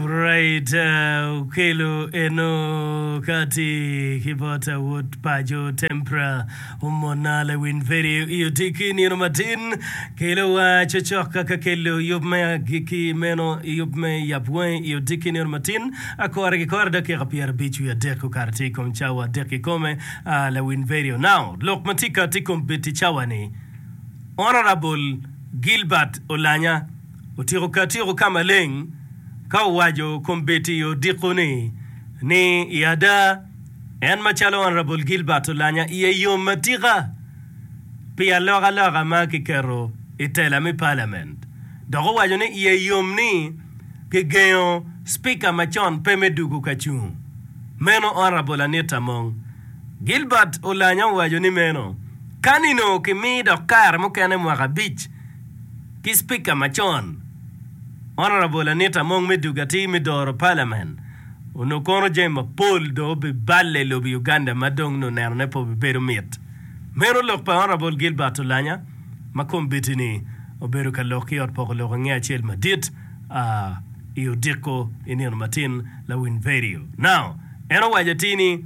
Right okelo eno kati ki bot awot paco Tempra omona lewin peri i otiki nino matin kelo wa cocok ka kelo yub me agiki meno yub me yap wangi i otiki nino matin akore ki kore dakika pyerabic wiye adek kokato tye i kom cawa adek kikome lewin peri onao lok matika tye kombeddi cawa ni Honorable Gilbert Olanya. Otyeko ka tyeko ka maleng ka owaco kombeddi i odiko-ni ni, I ada, en macalo Honourable Gilbert Olanya iye yom atika pi alokaloka ma kiketo i tela me Parliament dok owaco ni iye yom ni kigengo Speaker macon pe me dugo ka cung meno Honourable Anita Among. Gilbert Olanya owaco ni meno kani-nu kimi dok kare mukene mwaka abic. ki Spika macon, Honourable Anita Among me dugo atir me doro Parliament, onongo kono jami mapol dong obiballe i lobo Uganda ma dong nongo nenone pe obibedo mit. Meno lok pa Honourable Gilbert Olanya ma kombitini obedo ka lok ki ot poko lok i nge acel madit a i odiko i nino matin lawiny vedio. Now, en owaco atir ni,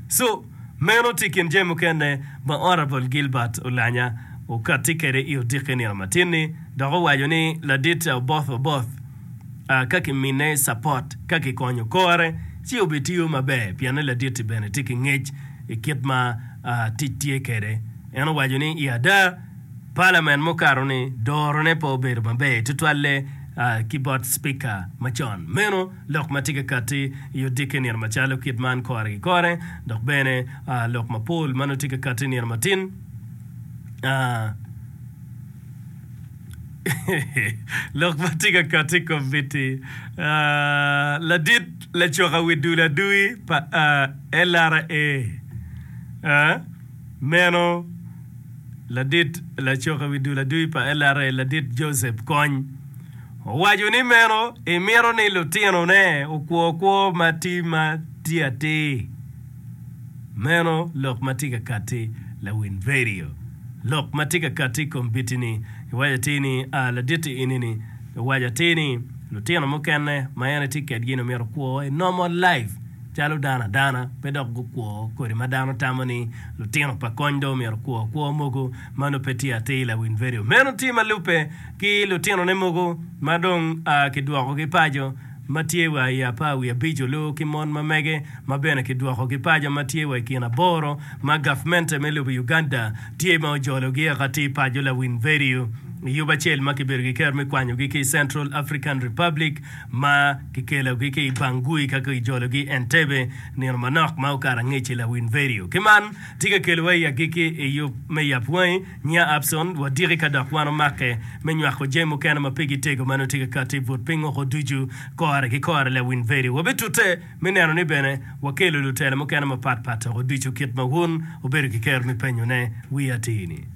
So, meno tye kin jami mukene ma Honourable Gilbert Olanya okatti kede i odikke nino matin-ni dok owaco ni ladit Oboth Oboth ka ki mine support ka ki konyo kore ci obi tiyo maber pienne ladit-ti bene tye ki ngec i kit ma tic tye kede. En owaco ni i ada Parliament mukato ni doro ne pe obedo maber tutwalle ki bot Speaker macon meno. Lok ma tye ka katti i odiki i nino macalo kit man kore ki kore, dok bene lok mapol ma nongo tye ka katti i nino matin. Lok ma tye ka katti i komitti ladit lacoka wi dul adui pa LRA, meno ladit lacoka wi dul adui pa LRA ladit Joseph Kony, Owaco ni meno imito ni lutinone okwo kwo ma ti ma tye atir. Meno lok ma tye ka katti lawin vedio. Lok ma tye ka katti i kom biti-ni iwaco atir ni, A laditti ini-ni, iwaco atir ni, lutino mukene ma en itye kedgi-ni omito kwo i normal life calo dano adana pe dok gukwo kodi ma dano tamo ni lutino pa kony dong omito kwo kwo mogo. Mano pe tye atir lawin vedio meno tye ma lubbe ki lutinone mogo ma dong a ki dwokogi paco ma tye wa i apar wiye abic olu ki mon ma mege ma bene ki dwokogi paco ma tye wa i kin aboro ma gavmente me lobo Uganda tye ma ojologi eka ti paco lawin vedio i yub acel ma ki bedo ki kero me kwanyogi ki i Central African Republic ma ki kelogi ki i Bangui ka ki jologi Entebbe nino manok ma okato angec-ci lawin vedio ki man Tika kelowa i agikki i yub me yap wangi? Nya Abson, wadiki ka dok wan omakke me nywako jami mukene ma pigi tego ma nongo tye ka kati but piny woko ducu kore ki kore. Lawiny Veri, wabitute me neno ni bene wakelo lutela mukene mapat pat dok oducu kit ma wun wubedo ki kero me penyone. Wi atir-ni.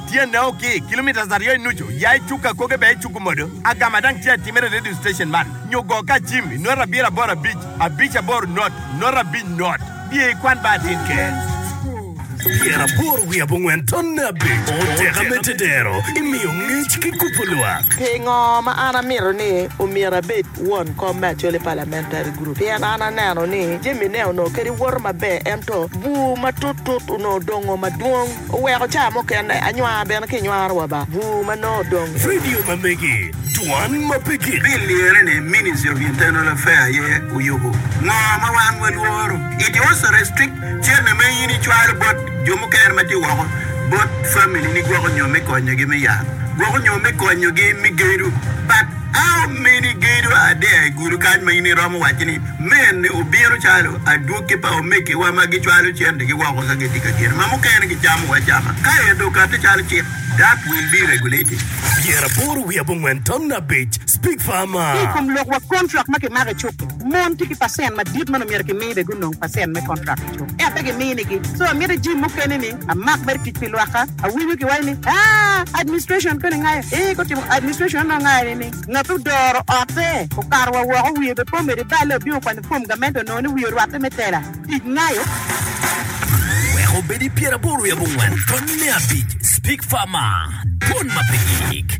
Tyenne o ki kilometres aryo i nucu, ya i cuk akoge bene icuku modo. Agama dang tye atimere i radio station man, nyo go ka acim i nota abiro aboro abic, abic aboro not, nota abic not. Biye i kwan ba atin ker. Pyera aboro wiye abongwen tonne abic. O teka me tetero, imiyo ngec ki kubo lwak. Pingo ma an amito ni omyero abed won kom me Acholi Parliamentary Group? Pien an aneno ni jamine onongo kadi woto maber ento bur matut tut onongo dongo madwong. Oweko caa mukene anywaa bene ki nywaro wa ba bur ma nongo odong. Vidio ma megi, Dwan ma pe gik. Bill liyere ni Ministry of Internal Affair aye oyubo ngo ma wan walworo. It also restrict cente ma in icwalo bot jo mukene ma tye woko bot family ni gwoko nyo me konyo gi me yat gwoko nyo me konyo gi me gedo but. Amini gedo adea i gudo kany ma in iromo wacci ni, 'Mene obino calo adwogi pa omegiwa ma gicwalo centegi woko ka gitye ka geno, ma mukene gicamo acama ka ento okatte calo cik, that will be regulated. Pyeraboro wiye abongwen tamna abic, Speak for Ki i Amar. kom lok wa kontrak ma kimako i cuk-ki, mon tye ki pacent madit ma onongo myero kimi bene gunong pacent me kontrak. Ento pe giminigi. So amito i jim mukene ni amak mere tic pi lwakka. Awinyo ki waco ni aah administration koni ngayo eeh gutimo administration anongo ngayo ni ni ngat odoro ote okato wa woko wiye be po medo ibale obino kwanyo form gamente onongo ni wiye orwatte me tela tic ngayo. Wek obed i pyeraboro i abongwen tony me abic Speak Farmer Dwon ma pe gik.